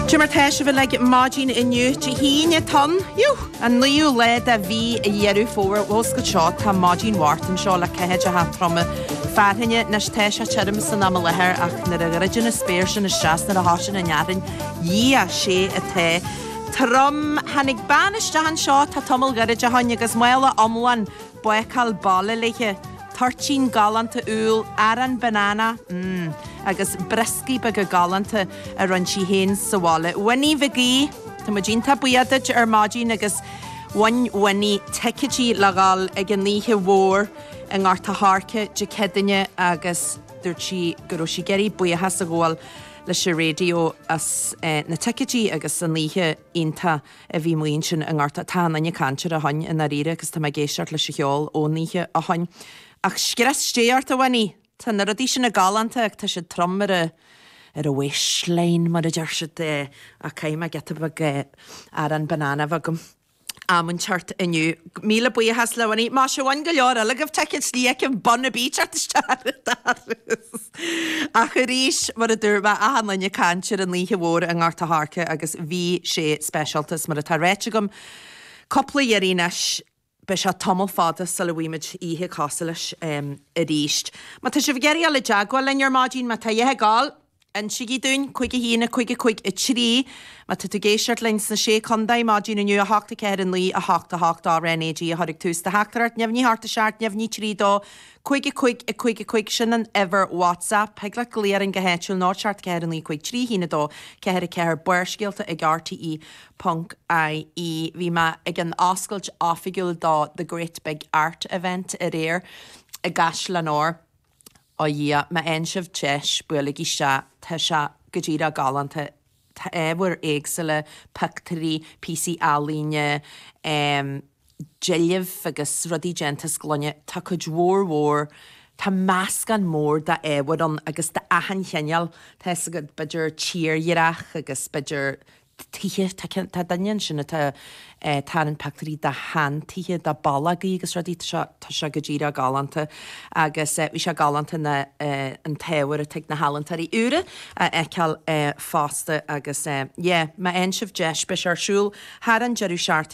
Cad é mar tá sibh uilig maidin inniu, Dé hAoine, an naoú lá de mhí Dheireadh Fómhair Muscailt seo, tá maidin mharbhánta anseo le ceathaideacha troma fearthainne. Anois tá sé tirim san am i láthair ach nuair a dhruideann an spéir sin isteach is nuair a thosaíonn an fhearthainn dhia sé atá trom. Tháinig bean isteach anseo tá tamall gairid ó shin agus mála iomlán bácáil baile léithe, toirtín galánta úll, arán banana, mm, agus brioscaí beaga galánta a rinne sí féin sa bhaile. Winnie Mhig Aoidh, tá muid iontach buíoch duit ar maidin agus bhain Winnie ticéidí le dhul ag an oíche mhór i nGort a' Choirce Dé Céadaoin agus dúirt sí go raibh sí ag iarraidh buíochas a ghabháil leis an raidió as na ticéidí agus an oíche iontach a bhí ansin i nGort Tá achan duine ag caint air ó shin i ndáiríre agus tá mé ag éisteacht leis an cheol ón oíche ó shin. Ach scrios Dé ort a Winnie! Tá na rudaí sin galánta ach tá siad trom ar a ar a waistline mar a deir siad ach caithfidh mé giota beag arán banana a bheith agam am inteacht inniu. Míle buíochas le Winnie. Dá mba amháin go leor eile agaibh, teigh an slí aici bun a bíteart isteach ar an dara. Ach arís, mar a dúirt mé, achan duine ag caint ar an oíche mhór i nGort a' Choirce agus bhí sé speisialta is mar atá ráite agam cúpla iarraidh anois, beidh sé tamall fada sula bhfaighimid oíche cosúil leis arís. Má tá sibh ag iarraidh a dhul i dteagmháil linn ar maidin, má tá scéal agaibh, insigí dúinn, cúig a haon, a cúig, a cúig, a trí, má tá tú ag éisteacht linn sna sé contae, maidin inniu, a hocht, a ceathair, a naoi, a hocht, a hocht, cuir RnaG ag tús do theachtaireacht, náid a hocht a seacht, náid trí dó, Cúig a cúig a cúig a cúig, sin an uimhir WhatsApp. Thig leat glaoch orainn go háitiúil, 04 44 9 5 3 1 2 4 4 Barrscéalta ag rte ponc ie Bhí mé ag an oscailt oifigiúil do The Great Big Art Event aréir i gCaisleán Óir. Ó Dhia, má fhaigheann sibh deis, buailigí isteach, tá sé go díreach galánta! tá ábhar éagsúla, pictiúirí, píosaí ealaíne, deilbh agus rudaí déanta as gloine, tá cuid mhór mhór, tá meascán mór d'ábhair ann agus d'achan chineál, tá fhios agat, b'fhéidir tírdhreach agus b'fhéidir tithe, tá duine ansin atá ag tarraingt pictiúirí de shean-tithe, de bhallogaí agus rudaí, tá sé go díreach galánta agus bhí sé galánta an t-ábhar atá ag na healaíontóirí úra a fheiceáil fosta agus yeah, má fhaigheann sibh deis, beidh sé ar siúl thar an deireadh seachtaine.